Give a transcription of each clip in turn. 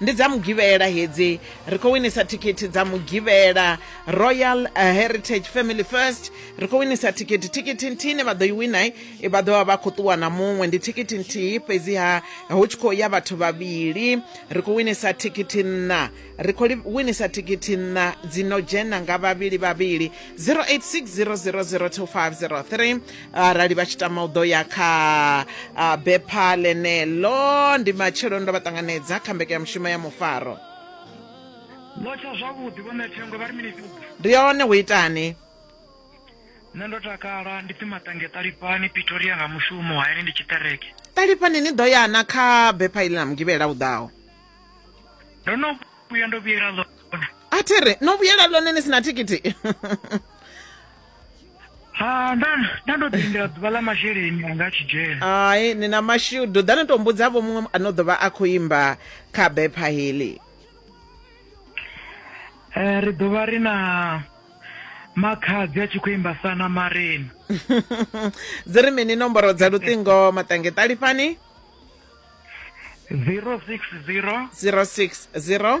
ndi dza mugivhela hedzi ri khou winisa thikhithi dza mugivhela royal eh, heritage family first ri khou winisa thikhithi thikhithi nthihi ne vha ḓo i winai eh, vha ḓo vha vha khou ṱuwa na muṅwe ndi thikhithi nthihi fhedziha hu tshi khou ya vhathu vhavhili ri khou winisa thikhithi nṋa ri khou winisa thikhithi nṋa dzi no dzhena nga vhavhili vhavhili 0860002503 arali vha tshi tama u ḓo ya kha uh, bepha ḽeneḽo ndi matshelo ndo vha ṱanganedza kha mbekanyamushumo ya mufaro lotsha zwavhuḓi vhone thengo vha ri mini ndi yone hu itani nṋe ndo takala ndi pfi maṱange ṱalipani pitoria nga mushumo hayani ndi tshiṱereke ṱalipani ni ḓo yana kha bepha iḽi na mugivhela u ḓaho ndo no vhuya ndo vhuyela ḽone a thi ri no vhuyela ḽone ni si na thikithi ha nda nda ndo ḓi lindela ḓuvha ḽa masheleni anga a tshi dzhena hai ni na mashudu ḓa ni to mbudzavho muṅwe ano ḓovha a khou imba kha bepha heḽi Eh, ri ḓovha ri na makhadzi a tshi khou imba sana marena dzi ri mini nomboro dza luṱingo maṱange ṱalifhani 060 060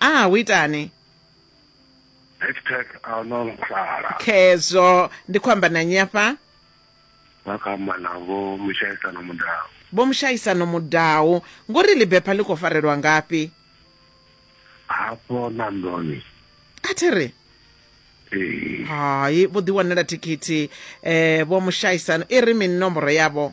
ah hu itani hashtag ahuna mukhala khezwo ndi khou amba na nnyi afha vha kha amba na vho mushaisano mudau vho mushaisano mudau ngori libepha ḽi khou farelwa ngafhi hafho na ndoni a thi ri hai vho ḓiwanela thikhithi um vho mushaisano i ri mini nomboro yavho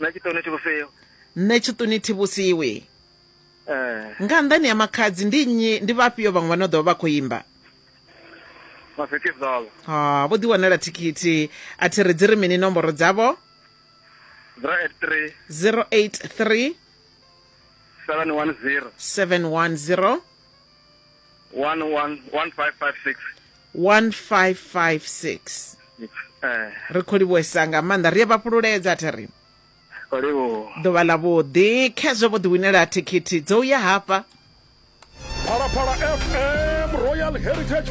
nṋe tshiṱoni thi vhusiwi nṋe tshiṱuni thi vhusiwi eh nga nnḓani ya makhadzi ndi nnyi ndi vhafhio vhaṅwe vha no ḓo vha vha khou imba mafheti zolo ha vho ḓi wanela thikhithi a thi ri dzi ri mini nomboro dzavho 083 083 710 710 one one one five five six 1556 eh ri khou livhuwesa nga maanḓa ri a vha fhululedza thi ri oliwo ḓuvha ḽa vhuḓi khezwo vho ḓiwinela thikhithi dzo u ya hafha Phalaphala FM Royal Heritage